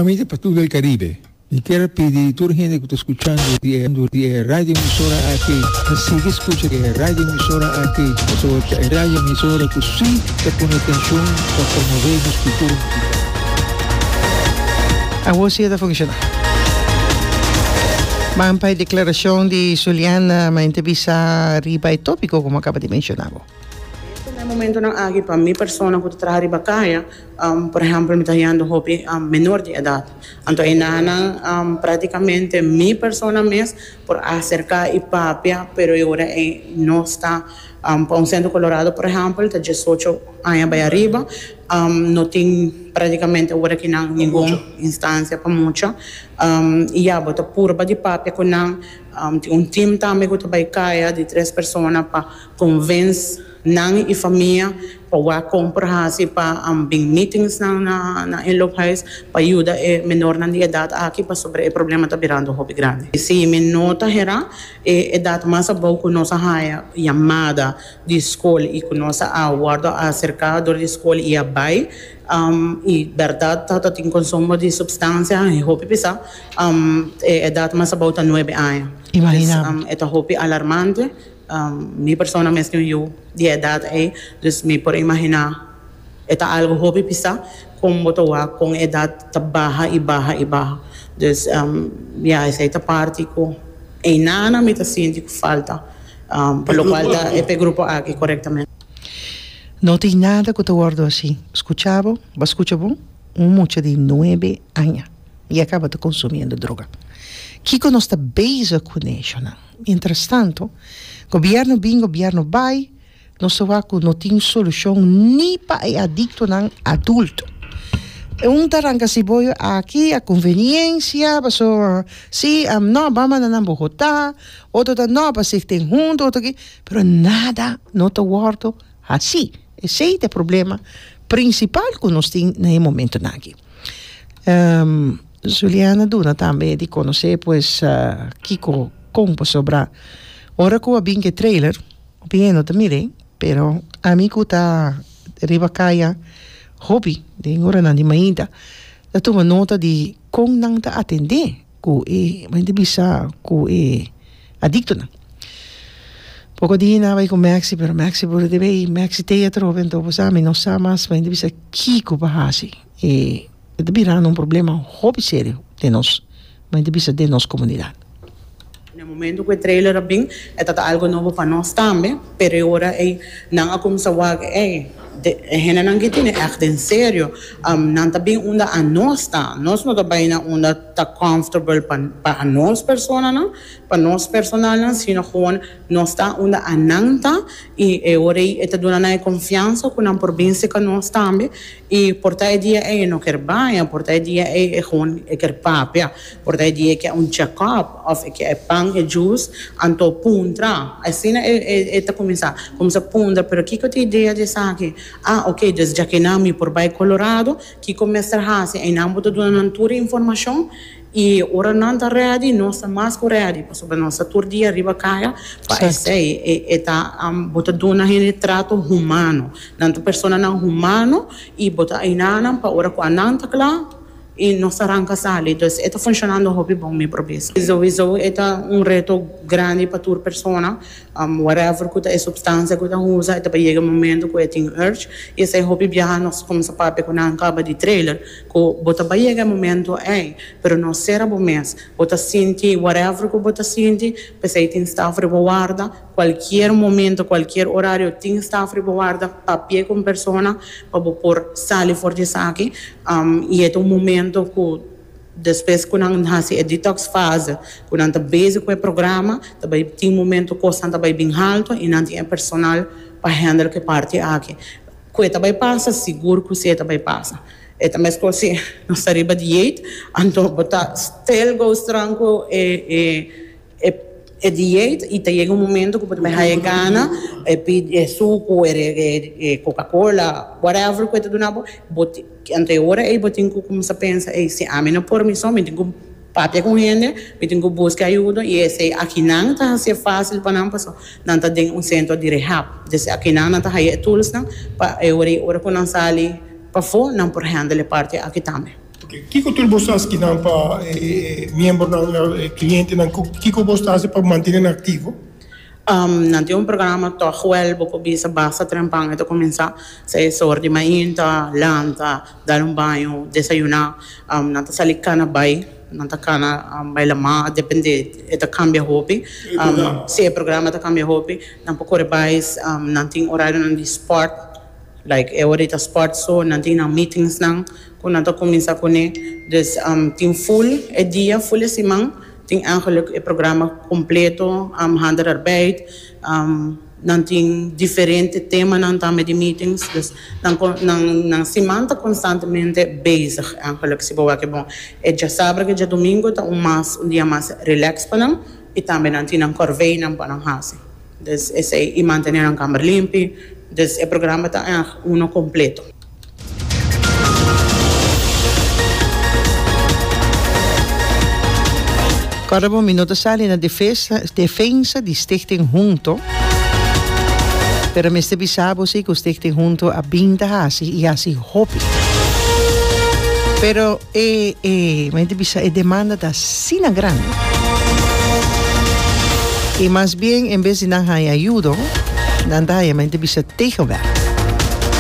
Famia pa tur el Caribe. Mi kier a pidi tur hende ku ta skuchando di e di e radioemisora aki pa sigui skucha di e radioemisora aki pasobra ta e radioemisora ku si ta pone atenshon pa promové nos kultura musical. Awor si e ta funshoná. Ban pa e deklarashon di Zuliana Maente Bisa riba e tópiko komo a kaba di menshoná bo. Esaki nan e momentonan aki pa mi persona ku ta traha riba kaya, por ehèmpel mi ta hallando hopi menor di edat. Anto enanan práktikamente mi persona mes por aserká i papia, pero e ora ei no sta. Pa un sentro kolorado por ehèmpel ta diesocho aña bai ariba, no tin práktikamente ora ki nan ningun instansia pa mucha. I ya bo ta purba di papia ku nan, tin un team tambe ku ta bai kaya di tres persona pa. Convince nan y famia pa wak compra haci pa an bin meetingsnan na inloophuis pa yuda e menornan di edad aki pasobra e problema ta birando hopi grandi. Si mi no ta hera e edad mas abou cu nos a haya yamada di school y cu nos a wordo acerca door di school y a bay y berdad ta ta tin consumo di substancia y hopi pisa e edad mas abou ta nuebe aña. Imagina bo. E ta hopi alarmante. Mi persona mes tin un yu di e edat ei, dus mi por imaginá e ta algu hopi pisá kon bo ta wak kon e edat ta baha i baha i baha. Dus, ya, esei ta parti ku einana mi ta sinti ku falta, pa lokual ta e p'e grupo aki korektamente. No tin nada ku ta wòrdu asi. Skuchá bo, bo a skucha bon? Un mucha di nuebe aña i a kaba ta konsumiendo droga. Kiko nos ta beza ku neshonan? Mientras tanto, gobierno bin, gobierno bai, nos ta wak cu no tin solucion ni pa e adictonan adulto. E un ta ranca si boyo aki a conveniencia, paso si, am, no, bam manda nan Bogota, otro ta no, pa sig tin hunto, otro ki, pero nada no ta wordo haci. Esey ta e problema principal cu nos tin na e momentonan aki. Juliana duna tambe di conoce pues kico con pasobra ora cu a bin cu e trailer tin e no ta mire pero ami cu ta riba caya hopi den oranan di mainta ta tuma nota di con nan ta atende cu e mainta bisa cu e adictonan poco di nan a bay cu Maxi pero Maxi por a bay Maxi tea atrobe entonces ami no sa mas mainta bisa kico pa haci e E ta birando un problema hopi serio den nos, ma e ta bisa den nos komunidat. Na momento ku e trailer a bin, e tabata algu nobo pa nos tambe, pero e ora ei nan a kuminsá wak ei, e hendenan ke tini ègt en serio, nan ta bin unda anos ta, nos no ta bai na unda ta comfortable pa pa anos personanan, pa nos personalnan, sino gewoon nos ta unda anan ta i e ora ei e ta duna nan e konfiansa ku nan por bin sika nos tambe. I por ta e dia ei e no kier baña, por ta e dia ei e gewoon e kier papia, por ta e dia e kier un check up of e kier e pan e jus, anto puntra, asina e e ta cuminsa, cuminsa puntra pero kico ta e idea di esaki? Ah ok dus djakinan mi por bay Colorado, kico mester haci? Einan bo ta duna nan tur e informacion. I ora nan ta rèdi, nos ta mas ku rèdi, pasobra nos ta tur dia riba kaya, pa esei e ta bo ta duna hende trato humano. Nan ta personanan humano i bo ta aina nan pa ora ku anan ta kla i nos ta ranka sali. Dus e ta funshonando hopi bon mi probes. Souiso e ta un reto grandi pa tur persona, whatever ku ta e supstansia ku ta usa, e ta por yega e momento ku e tin urge i esei hopi biaha nos ta kuminsá papia ku nan kaba di trailer Cu bo ta bay yega e momento ey, pero no cera bo mes. Bo ta sinti whatever cu bo ta sinti, p'esey tin staf riba warda. Cualkier momento, cualkier horario tin staf riba warda. Papia cu un persona pa bo por sali for di esaki. Y e ta un momento cu despues cu nan haci e detox fase, cu nan ta bezig cu e programa, ta bay tin momento cosnan ta bay bin halto y nan tin e personal pa handle cu e parti aki. Cu e ta bay pasa, sigur cu si e ta bay pasa. E ta mescor si nos ta riba di dieet, anto bo ta still go strong cu e dieet y ta yega un momento cu bo ta bay haya e gana e pidi e sucu, e coca cola, whatever cu e ta duna bo, bo tin, anto e ora ey bo tin cu cuminsa pensa, ey, si ami no por mi so, mi tin cu. Papia con hende, mi tin cu busca ayudo y esey akinan ta hacié facil pa nan pasobra nan ta den un centro di rehab. Deci akinan nan ta haya e toolsnan pa e ora y ora cu nan sali pafo nan por handle e parti aki tambe. Ok, kico tur bo sa schi nan pa e miembronan, e clientenan, cu kico bo ta haci pa mantene nan activo? Um, nan tin un programa tog huel, bo por bisa basta trempan e ta cuminsa, sea e sor di main ta lanta, Dal un baño, desayuná. Nan ta sali cana bai, nan ta cana bai la mar, depende, e ta cambia hopi. Sí, e programa ta cambia hopi. Nan por core bai, nan tin horarionan di sport, like e horita sport so, nan tin nan meetingsnan cu nan ta cuminsá cune. Dus tin full e dia, full e siman, tin eigenlijk e programa completo, handelarbeid. Nan tin diferente temanan tambe di meetings, dus nan con, nan, nan siman ta constantemente bezig. En gelukkig si bo wak bon, e dja sabra ke djadomingo ta un mas, un dia mas relax pa nan y tambe nan tin nan corveynan pa nan haci. Dus esey, y mantene nan camber limpi, dus e programa ta èg uno completo. Kòrda bo mi no ta sali na defesa defensa di Stichting Hunto, pero mester bisa bo si ku Stichting Hunto a bin ta hasi i hasi hopi. Pero e e mi ta bisa e demanda ta asina grandi i mas bien en bes di nan haña yudo nan ta haña mi ta bisa tegenwègd.